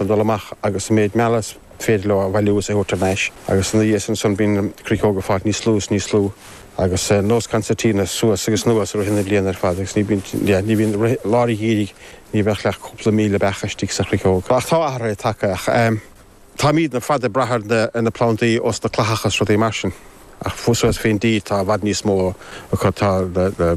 a dhul amach agus an méid meala is féidir leo a bhailiú is a thabhairt thar n-ais agus ina dhiaidh sin ansan bíonn na cruiceoga ag fáil níos lú is níos lú agus nós concertina suas agus anuas i rith na bliana ar fad agus ní bíonn yeah ní bhíonn rith lár an gheimhridh ní bheadh ach cúpla míle beach istigh sa chruiceog ach tá athruithe tagtha ach ehm táimidne ar fad ag brath ar na plandaí ós na clathacha is rudaí mar sin. Ach fós suas fén dtír tá i bhfad níos mó acu tá like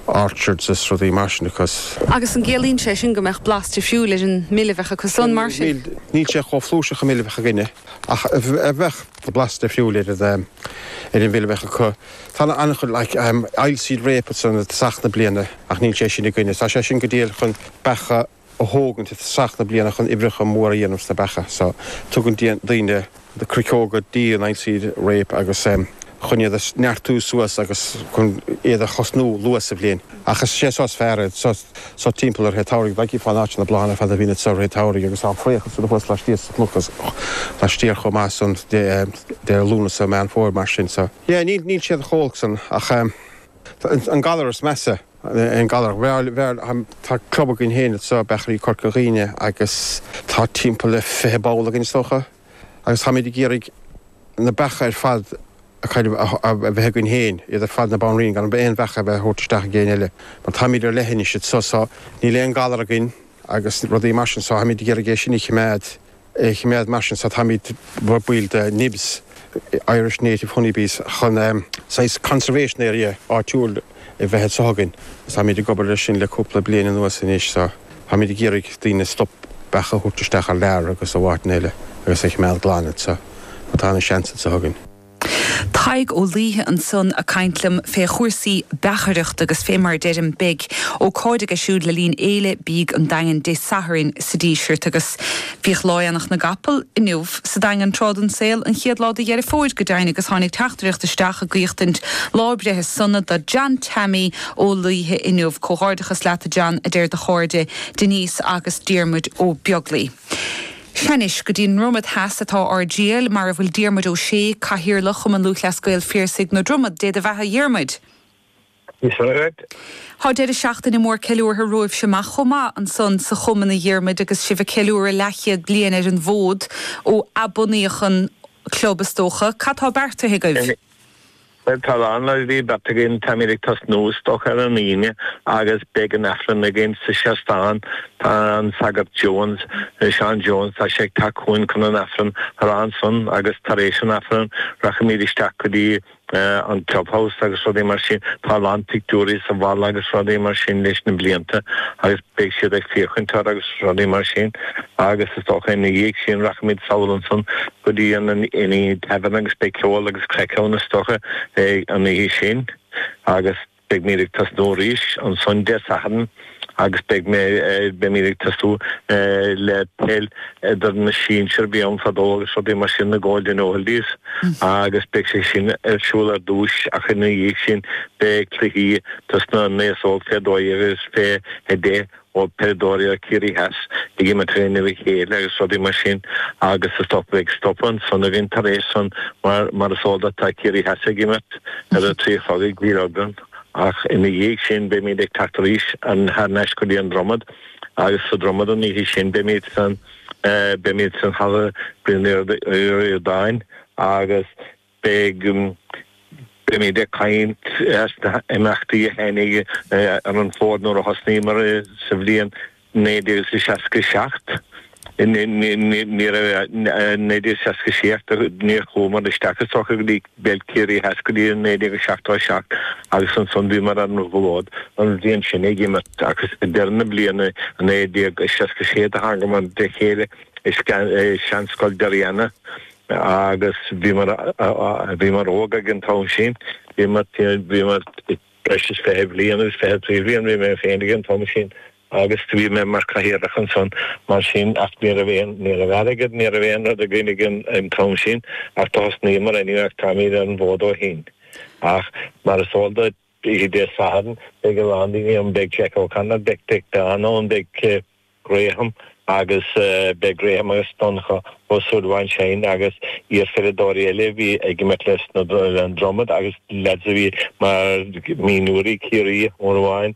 orchards is rudaí mar sin acu. Agus an gciallaíonn sé sin go mbeadh blas difriúil ar an mil a bheadh acusan, mar sin? Níl sé chomh flúirseach an mil a bheadh againne ach bheadh blas difriúil ar an mhil a bheadh acu. Tá an-chuid like oilseed rape ansan i dtosach na bliana ach níl sé sin againne. Tá sé sin go diail chun beacha. a thógaint i dtosach na bliana chun oibreacha móra a dhéanamh sna beacha so. Tugann daoine cruiceoga go dtí an oilseed rape agus chun iad a neartú suas agus chun iad a thosnú luath sa bhliain. Ach is sé so is fearr iad so, so timpeall lár an tsamhraidh. Daigí fán áit seo na bláthanna ar fad a bhíonn iad so lár an tsamhraidh agus tá an fraoch ag siúl thuas laistíos sa chnoc agus laistiar chomh maith ansan deireadh Lúnasa, Meán Fómhair mar sin so. Yeah níl siad chomh holc san ach tá an galar is measa. an galar. Bheul, bheul, tá club againn féin anseo, Beachairí Chorca Dhuibhne, agus tá timpeall le fiche ball againn is dócha, agus táimid ag iarraidh na beacha ar fad acu a bheith againn féin, iad ar fad na banríona, gan aon bheacha a bheith á thabhairt isteach ag éinne eile, mar táimid ar leithinis anseo, so níl aon ghalar againn agus rudaí mar sin so táimid ag iarraidh é sin a chimeád. a choimeád. Mar sin, táimid, baill de NIHBS, Irish Native Honeybees, chun saghas conservation area áitiúil a bheith anseo againn. Táimid ag obair leis sin le cúpla bliain anuas anois. Táimid ag iarraidh daoine stop beacha a thabhairt isteach thar lear agus ó áiteanna eile agus é a choimeád glan anseo mar tá an-seans anseo againn. Tadhg Ó Laoithe ansan a' caint liom fé chúrsaí beachaireacht agus fé mar a deirim beidh ócáid aige siúd le linn Fhéile Bídh an Daingin Dé Sathairn sa Díseart agus bhíodh Lá Aonach na gCapall, inniu, sa Daingean tráth den saol, an chéad lá de Dheireadh Fómhair go deimhin agus tháinig teachtaireacht isteach ag guíochtaint lá breithe sona do John Teaimí Ó Laoithe inniu, comhghairdeachas leat a John a deir do chairde Denise agus Diarmuid Ó Beaglaoi. Sea anois, go dtí an nDromaid theas atá ár dtriall, mar a bhfuil Diarmuid Ó Sé, Cathaoirleach Chumann Lúthchleas Gael Phiarsaigh na Dromoda. Dé do bheatha, a Dhiarmuid! Is ait. Tá deireadh seachtaine mór ceiliúrtha romhaibhse amach chomh maith ansan sa Chumann, a Dhiarmuid, agus sibh ag ceiliúradh leathchéad bliain ar an bhfód, ó athbunaíodh an club, is dócha. Cad tá beartaithe agaibh? Bhuel tá a lán rudaí beartaithe againn, táimid ag tosnú is dócha ar an Aoine agus beidh an Aifreann againn sa seastán. Tá an Sagart Jones, Seán Jones, tá sé ag teacht chugainn chun an Aifreann a rá ansan agus tar éis an Aifreann rachaimid isteach go dtí an Clubhouse agus rudaí mar sin. Tá a lán pictiúirí sa bhfalla agus rudaí mar sin leis na blianta agus. Beidh siad ag féachaint air agus rudaí mar sin agus is dócha ina dhiaidh sin rachaimid sall ansan go dtí an Inny Tavern agus beidh ceol agus craic ann is dócha an oíche sin agus beimid ag tosnú arís ansan Dé Sathairn agus beidh beimid ag tosnú le peil idir na sinsir a bhí ann fadó agus rudaí mar sin, na Golden Oldies, agus beidh sé sin ar siúl ar dtús ach ina dhiaidh sin beidh cluichí dos na n-aos óg fé 12 agus fé 10 ó peileadóirí ó Ciarraí Theas ag imirt in aghaidh a chéile agus rudaí mar sin agus is dócha go bheidh stopadh ansan againn tar éis san mar mar is eol duit tá Ciarraí Theas ag imirt ar a trí a chlog i gCill Orglan ach ina dhiaidh sin beimíd ag teacht arís thar nais go dtí an Dromad. agus sa Dromad an oíche sin beimid san beimid san Halla Brian Ríordáin agus beidh beimid ag caint as na h-imeachtaí a tháinig ar an bhfód nuair a thosnaíomar sa bhliain 1967 1966 ach níor chuamar isteach i sochaí go dtí peil Ciarraí Theas go dtí 1977 agus ansan bhíomar ar an bhfód an bhliain sin ag imirt agus ag deireadh na bliana i 1966 do thángamar le chéile i Seanscoil Doire Ianna agus bhíomar bhíomar óg ag an t-am sin bhíomar bhíomar breis is fiche bliain agus fiche trí bhliain bhí mé féin ag an t-am sin agus do bhí mé mar Cathaoirleach ansan mar sin ach ní raibh aon, ní raibh airgead, ní raibh aon rud againn ag an t-am sin ach do thosnaíomar anyway ach táimid ar an bhfód ó shin. Ach mar is eol duit, oíche Dé Sathairn beidh a lán daoine ann, beidh Jack O'Connor, beidh, beidh Declan ann, beidh eh Graham agus eh beidh Graham agus Donncha Ó Súilleabháin Shine agus iarpheileadóirí eile a bhí ag imirt leis na, leis an Dromad agus lads a bhí mar mhionúirí Ciarraí, uair amháin,